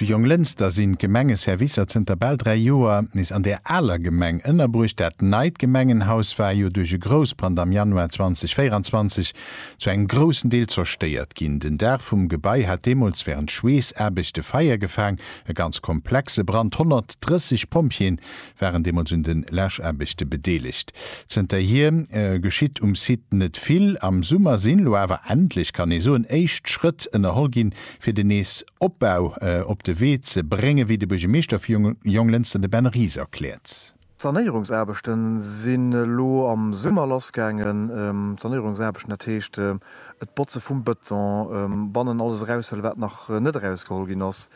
Zu Jonglënster sinn d'Gemengeservicer zënter bal 3 Joer nees an der aler Gemeng ënnerbruecht. Dat neit Gemengenhaus war jo duerch e Groussbrand am Januar 2024 zu engem groussen Deel zerstéiert ginn. Den Daach vum Gebai hat deemools wärend Schweessaarbechte Feier gefaang, e ganz komplexe Brand. 130 Pompjeeën waren deemools un de Läschaarbechte bedeelegt. Zënterhier geschitt um Site net vill. Am Summer sinn elo awer endlech, kann ee soen, éischt Schrëtt ënnerholl ginn, fir den nees Opbau op de Wee ze bréngen, wéi de Buergermeeschter vu Jonglënster, de Ben Ries, erkläert. D'Sanéierungsaarbechte sinn elo am Summer lassgaangen. Sanéierungsaarbechten, dat heescht d'Botze vum Bëton, bannen alles eraushëllen, wat nach net erausgeholl ginn ass.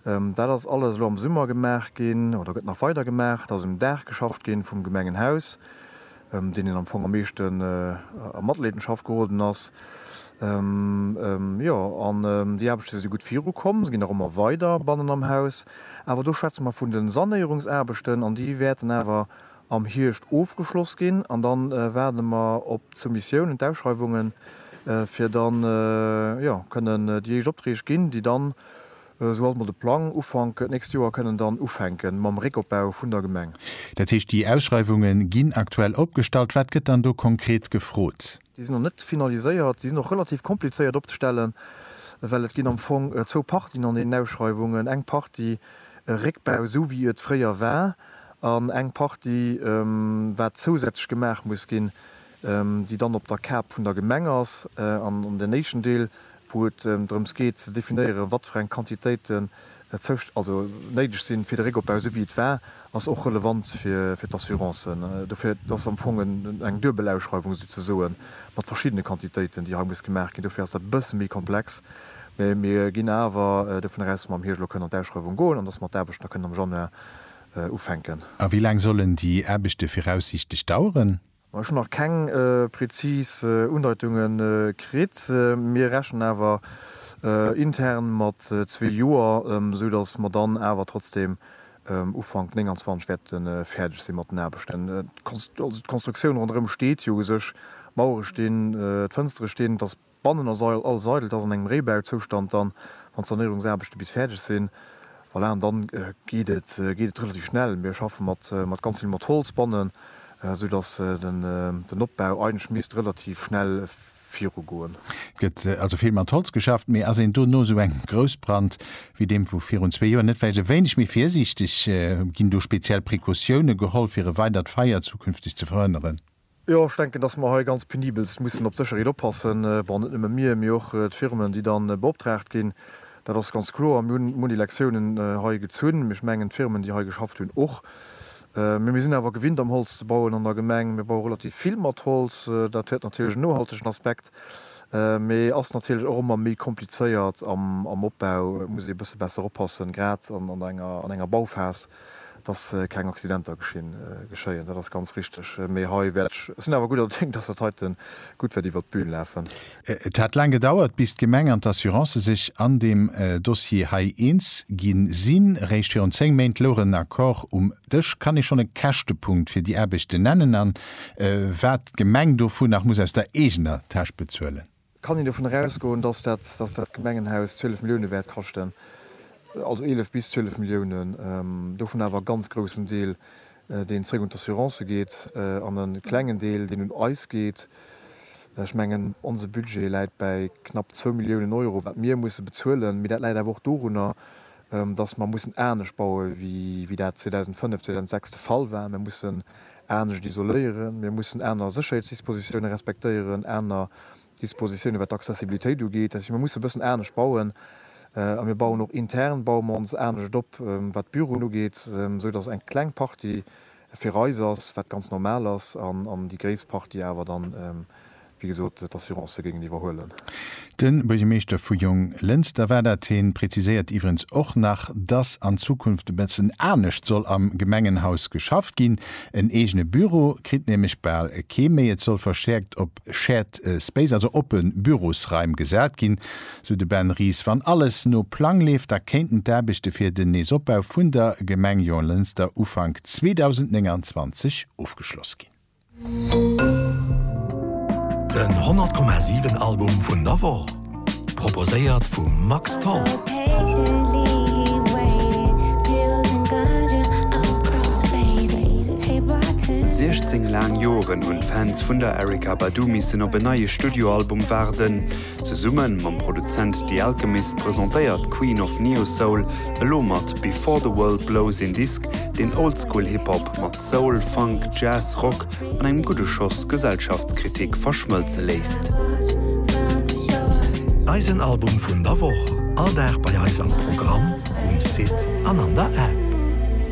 Dat ass alles elo am Summer gemaach ginn oder gëtt nach weider gemaach. Et ass um Daach geschafft ginn vum Gemengenhaus, ëm deen een am Fong am meeschten a Matleedenschaft geroden ass. Jo, an déi Aarbechte si gutt virukomm, se ginn nach ëmmer weider bannen am Haus. Awer do schwätze mer vun de Sanéierungsaarbechten an déi wäerten awer am Hierscht ofgeschloss ginn an dann waarde mer op d'Soumissiounen, d'Ausschreiwungen, fir dann jo kënnen déi éischt Opträg ginn, déi dann, esou ass mol de Plang, Ufank d'nächst Joer kënnen dann ufänken mam Réckopbau vun der Gemeng. Dat heescht, déi Ausschreiwungen ginn aktuell opgestallt. Wat gëtt dann do konkret gefrot? Déi sinn nach net finaliséiert. Déi sinn och relativ komplizéiert opzestellen, well et ginn am Fong zwou Partien an deenen Ausschreiwungen, eng Partie Réckbau, esou wéi et fréier war, an eng Partie, wat zousätzlech gemaach muss ginn, déi dann op der Kap vun der Gemeng ass. An deen éischten Deel, wou et drëms geet ze definéieren, wat fir eng Quantitéiten Zousch also néideg sinn, fir de Réckopbau, esou wéi et war, ass och relevant fir d'Assurancen. Dofir, et ass am Fong eng duebel Ausschreiwung souzesoe mat verschiddene Quantitéiten, déi hei muss gemaach ginn. Dofir ass dat e bësse méi komplex. Mä mir ginn awer dovun aus, dass mer am Hierscht elo kënnen an d'Ausschreiwung goen an dass mer d'Aarbechten da kënnen am Januar ufänken. A wéi laang sollen déi Aarbechte viraussiichtlech daueren? Ech hunn nach keng prezis Undeitunge kritt. Mir rechnen awer intern mat zwee Joer, esou datt mer dann awer trotzdeem Ufank 29 wäerte fäerdeg si mat den Aarbechten. D'Konstruktioun ronderëm steet jo u sech, d'Mauere stinn, d'Fënstere stinn, et ass Bannen ass alles eidel, et ass an engem Réibauzoustand dann, wann d'Sanéierungsaarbechte bis fäerdeg sinn. Voilà, an dann geet et relativ schnell. Mir schaffe mat ganz vill mat Holz bannen, esou datt den Opbau eigentlech misst relativ schnell virugoen. Et gëtt also vill mat Holz geschafft. Mee ass een do no esou engem Groussbrand wéi deem vu virun zwee Joer net vläicht e wéineg méi virsiichteg? Ginn do speziell Precautioune geholl, fir e weidert Feier zukünfteg ze verhënneren? Jo, ech denken, dass mer hei ganz penibelst mussen op d'Sécherheet oppassen. Bon, net nëmme mir, mee och d'Firmen, déi dann beoptraagt ginn. Dat ass ganz kloer. Mir hunn munn Elektiounen hei gezunn, ech mengen d'Firmen, déi hei geschafft hunn, och. Mee mir sinn awer gewinnt, am Holz ze bauen an der Gemeng. Mir baue relativ vill mat Holz. Dat huet natierlech en nohaltegen Aspekt, mee ass natierlech och ëmmer méi komplizéiert am Opbau. Et muss ee e bësse besser oppassen, grad an enger Bauphas. dass keng Accidenter geschéien. Dat ass ganz richteg. Mee hei wäert ech, ech sinn awer gudder Déng, dass dat heite gutt wäert iwwert d'Bün lafen. Et hat laang gedauert, bis d'Gemeng an d'Assurancë sech an deem Dossier hei eens gi sinn. Eréischt virun zéng Méint louch en Accord um Dësch. Kann ee schonn e Käschtepunkt fir déi Aarbechten nennen a wat d'Gemeng dovu nach muss aus der eegener Täsch bezuelen? Kann een dovunner ausgoen, dass dat Gemengenhaus 12 Milliounen wäert kaschten, also 11 bis 12 Milliounen, dovun awer e ganz groussen Deel, deen zréck un d'Assurancë geet, an e klengen Deel, deen un eis geet? Ech mengen, onse Budget läit bäi knapp zwou Milliounen Euro, wat mir musse bezuelen, mee dat läit awer och dorunner, dass mer mussen anescht baue wéi dat 2005, 2006 de Fall war. Mir mussen anescht isoléieren, mir mussen aner Sécherheetsdispositiounen respektéieren, aner Dispositiounen, wat d'Accessibilitéit ugeet. Dat heescht, mir mussen e bëssen anescht bauen. A mir bauen och intern, baue mer ons anescht op, wat d'Büroen ugeet, esou dass eng kleng Partie fir eis ass, wat ganz normal ass, an déi gréisst Partie awer dann, wéi gesot, d'Assurancë géingen iwwerhuelen. De Buergermeeschter vu Jonglënster war dat. Hien präziséiert iwwerens och nach, dass an Zukunft e bëssen anescht soll am Gemengenhaus geschafft ginn. En eegene Büro kritt nämlech bal kee méi. Et soll verstäerkt op Shared Space, also oppe Bürosraim, gesat ginn, sou de Ben Ries. Wann alles no Plang leeft, da kéinten d'Aarbechte fir den Neesopbau vun der Gemeng Jonglënster Ufank 2029 ofgeschloss ginn. Den 100,7 Album vun der Woch. Proposéiert vum Max Tholl. Siechzéng laang Joren hunn d'Fans vun der Erykah Badu missen op en neie Studioalbum waarden. Zesumme mam Produzent The Alchemist presentéiert d'Queen of Neo-Soul elo mat Before the World Blows een Disk, deen Oldschool-Hip-Hop mat Soul, Funk, Jazz, Rock an engem gudde Schoss Gesellschaftskritik verschmëlze léisst. Eisen Album vun der Woch, all Dag bei eis am Programm, um Site an an der App.